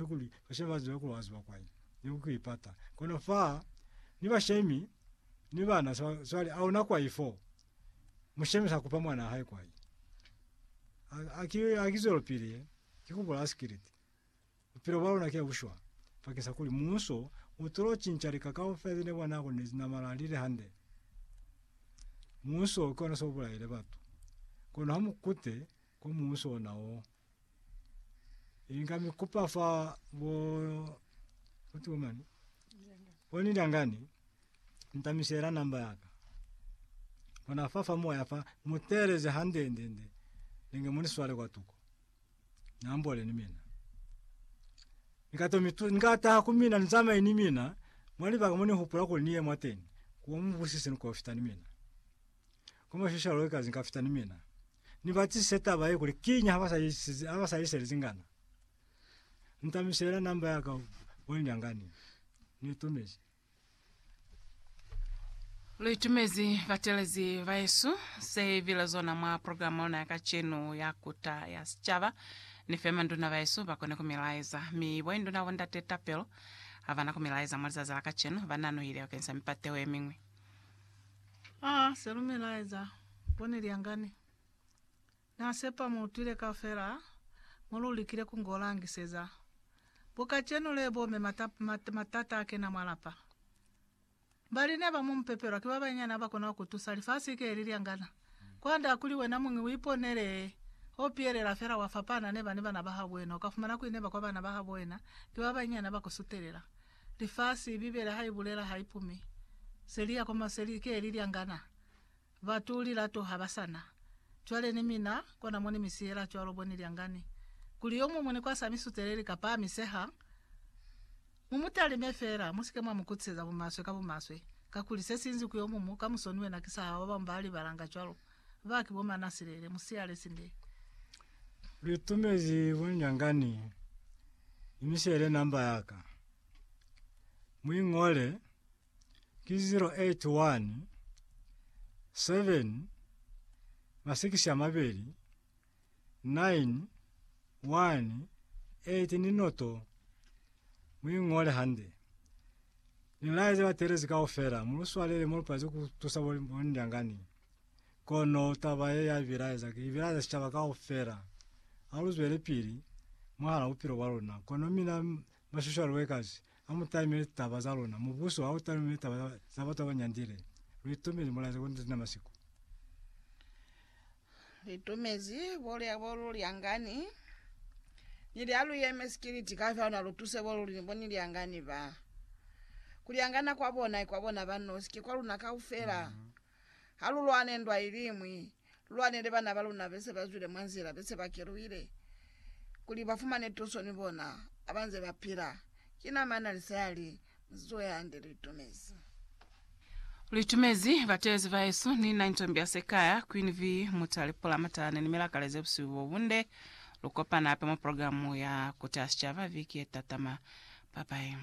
Ka kuli, bashe ba zwela ku azuba kwai, ni ku i pata. Kono fa ni bashemi ni bana, swa, swali a una kwai fo. Mushemi sa kupa mwana hae kwai. Ha, ha ki, ha ki zwelopili ye, ki ku bulaya sikiliti. Bupilo bwa luna ki bu shwa, bakeng sa kuli muuso u tulo cinca lika kaufela ze ne bwa nako ne zi namala li li hande. Muuso ki ona so bulaile batu. Kono ha mu kute kwa muuso ona o. Inga mi kupa fa bo utuwa mani boni dangani ntamisela namba yaka ona fafa moya fa muteleze hande nde nde ninge muni swale kwa tuko nambole ni mina ngato mitu ngata kumina nzama ini mina mwali ba muni hupula kuli niye mwateni kumu busisi niko fita ni mina Kono shishalo ikaze nka fita ni mina. Ni ba tsise taba ye kuli kiñi ha ba sa isize, ha ba sa isele zingana. Nta misela number ya ka wa nyangani. Ni itumezi. Lu itumezi batelezi ba Yesu. Se bile zona mwa program ya luna ya kacenu ya Kuta ya Sicaba. Ni fe manduna ba Yesu ba kone ku mi laeza. Mi bo induna bo Ndate Tapelo ha ba na ku mi laeza mwa lizazi la kacenu. Ba nanuhile bakeng sa mipateho ye miñwi. A se lumela eza bone lyangani. Na sepa mu utwile kaufela mo lu likile ku ngo langiseza. Bo kacenu le bo me matata a kena mwa lapa. Bali ne ba mu mupepelwa ki ba banyinyani ha ba kona ku tusa. Lifasi ki le li lyangana. Kwand'a kuli wena muñi u iponele ho pielela fela wa fapana ne ba ni bana ba habo wena. U ka fumana kuli ne ba kwa bana ba habo wena ki ba banyinyani ha ba ku sutelela. Lifasi, Bibele ha i bulela ha i pumi. Se li ya kwa maseli, ke li lyangana. Batu lilato ha ba sa na. Cwale ni mina, kona mo ni mi siyela cwalo bo ni lyangani. Kuli yo muñwi ni kwasa mi suteleli ka pahamiseha, mu mu talime fela, mu si ke mwa mu kutiseza bumaswe ka bumaswe, kakuli se si inzi ku yo mumu, ka musoni wena ki sa hao, ba bamwi ba libalanga cwalo. Ba ki bo mana silele, musiyale sinde. Lu itumezi bunyangani ni misiyale namba yaka. Mu ingole ki 081 7 masikisi a mabeli 9, 1, 8 ni noto mu i ngole hande. Ni laezi batelezi kaufela, mu lu swalele mo lu palezi ku tusa bo bo ndyangani. Kono taba ye ya bilaeza ki bilaeza sicaba kaufela. Ha lu zwele pili mwahala bupilo bwa luna. Kono mina Mashushu a Luekazi a mu taimile litaba za luna. Mubuso ha u taime litaba za batu ba ba nyandile. Lu itumile mulaya za konditi na masiku. Lu itumezi bulya bo lu lyangani ni lya lu yemezi ki liti ka fyalo na lu tuse bo luli ni bo ni lyangani ba. Ku lyangana kwa bona i kwa bona ba nosi, ki kwa luna kaufela. Ha lu lwane ndwa iliñwi, lu lwanele bana ba luna be se ba zwile mwa nzila, be se ba keluhile, kuli ba fumane tuso ni bona ha ba nze ba pila. Ki na mana li sa li, Mu si zuhe hande, lu itumezi. Lu itumezi bateezi bahesu. Ni na ni tombi ya Sekaya, Queen V, Mutale, Pula, Matalane ni Milakale ze busihu bo bunde. Lu kopane hape mwa programu ya Kuteha Sicaba viki ye tatama. Bye bye.